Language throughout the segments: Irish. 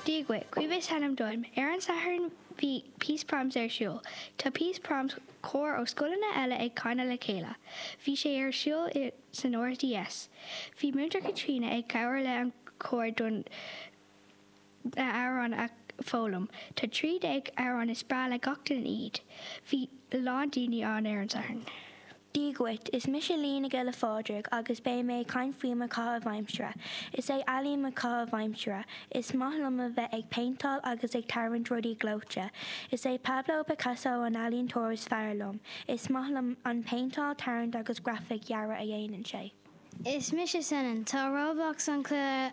Dia dhuit, Caoimhe is ainm dom. Ar an Satharn bhí Peace Proms ar siúl. Tá Peace Proms cór ó scoileanna eile ag canadh le chéile. Bhí sé ar siúl i san RDS. Bhí Múinteoir Caitríona ag cabhair le an cór don na amhráin a foghlaim. Tá trí déag amhráin is breá le gach duine iad. Bhí a lán daoine ann ar an Satharn. Dia dhuit, is mise Liadh Giolla Phádraig agus beidh mé ag caint faoi mo chaitheamh aimsire. Is é ealaín mo chaitheamh aimsire. Is maith liom a bheith ag péinteáil agus ag tarraingt rudaí gleoite. Is é Pablo Picasso an ealaíontóir is fearr liom. Is maith liom an péinteáil, tarraingt agus grafaic dhearadh a dhéanann sé. Is mise Senan. Tá Roblox an cluiche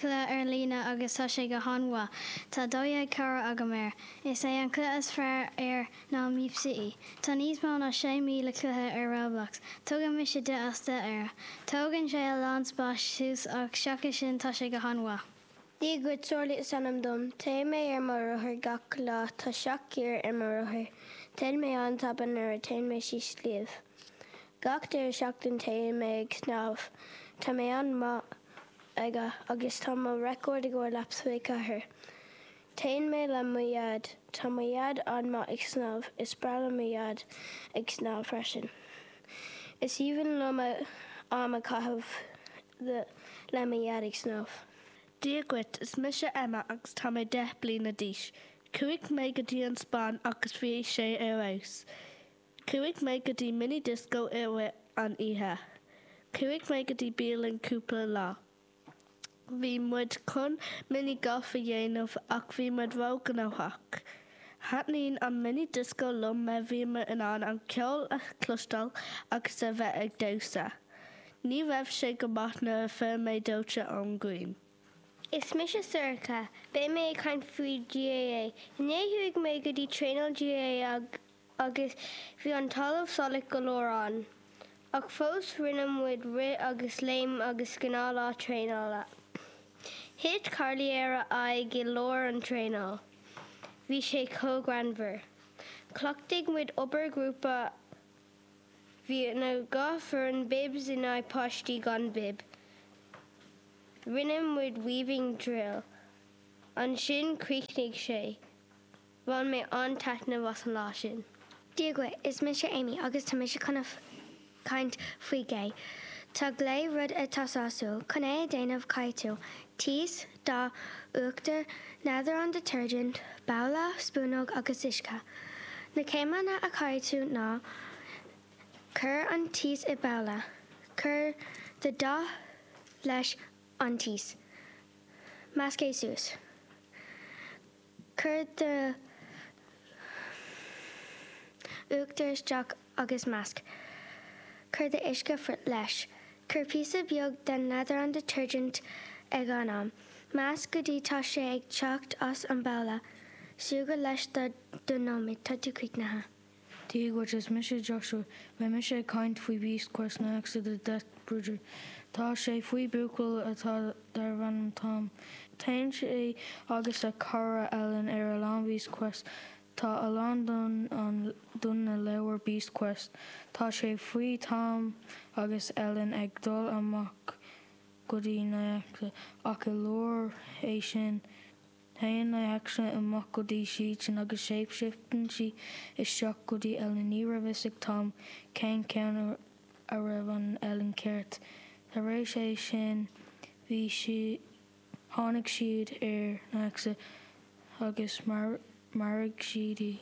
ar líne agus tá sé go han mhaith. Tá 12 cara agam air. Is é an cluiche is fearr air ná Meep City. Tá níos mó ná 6,000 cluiche ar Roblox. Tugann mise deich as deich air. Tógann sé a lán spáis suas ach seachas sin tá sé go han mhaith. Dia dhuit, Searlaí is ainm dom. Téann mé ar mo rothar gach lá. Tá seacht giar ar mo rothar. Téann mé an-tapa nuair a téann mé síos sliabh. Gach deireadh seachtain téann mé ag snámh. Tá mé an-maith aige agus tá mo record i gcomhair laps tríocha ceathair. Téann mé le mo Dhaid. Tá mo Dhaid an-maith ag snámh. Is breá le mo Dhaid ag snámh freisin. Is aoibhinn liom am a chaitheamh le mo Dhaid ag snámh. Dia dhuit, is mise Emma agus tá mé deich bliana d'aois. Chuaigh mé go dtí an Spáinn agus bhí sé ar fheabhas. Chuaigh mé go dtí mini-disco i rith an oíche. Chuaigh mé go dtí bialann cúpla lá. Bhí muid chun mini golf a dhéanamh ach bhí muid ró gnóthach. Thaitníonn an mini disco liom mar bhíomar in ann an ceol a chloisteáil agus a bheith ag damhsa. Ní raibh sé go maith nuair a fuair mé dóite ón ghrian. Is mise Sorcha. Beidh mé ag caint faoi GAA. Inné chuaigh mé go dtí traenáil GAA agus. agus bhí an talamh salach go leor ann. Ach fós rinne muid rith agus léim agus gnáth lá traenála. Thit Carly ar a aghaidh i lár an traenáil. Bhí sé chomh greannmhar. Chleachtaigh muid obair ghrúpa. Bhí na dhá foireann bibs in aghaidh páistí gan bib. Rinne muid weaving drill. Ansin chríochnaigh sé. Bhain mé an-taitneamh as an lá sin. Dia dhuit, is mise Amy agus tá mise chun a chaint faoi glae. Tá glae rud atá sásúil chun é a déanamh caithfidh tú, Taos, dath, uachtar, neadar an detergent, babhla, spúnóg agus uisce. Na céimeanna a chaithfidh tú ná, Cuir an taos i babhla. Cuir do dath leis an taos. Measc é suas. Cuir do uachtar isteach agus measc. Cuir do uisce leis. Cuir píosa beag den leathrann detergent ag an am. Measc go dtí tá sé ag teacht as an mbabhla. Súgradh leis do dó nóiméad. Tá tú críochnaithe. Dia dhuit, is mise Joshua. Beidh mise ag caint faoi Beast Quest Nixa the Death Bringer. Tá sé faoi buachaill atá darbh ainm Tom. Téann sé agus a chara Ellen ar a lán Beast Quest. Tá a lán don an don na leabhair Beast Quest. Tá sé faoi Tom agus Ellen ag dul amach go dtí Nixa ach i lár é sin, Téann Nixa amach go dtí siadsan agus shapeshifteann sí isteach go dtí Ellen. Ní raibh fhios ag Tom cén ceann a raibh an Ellen ceart. Tar éis é sin bhí sí, tháinig siad ar Nixa agus mharaigh siad í.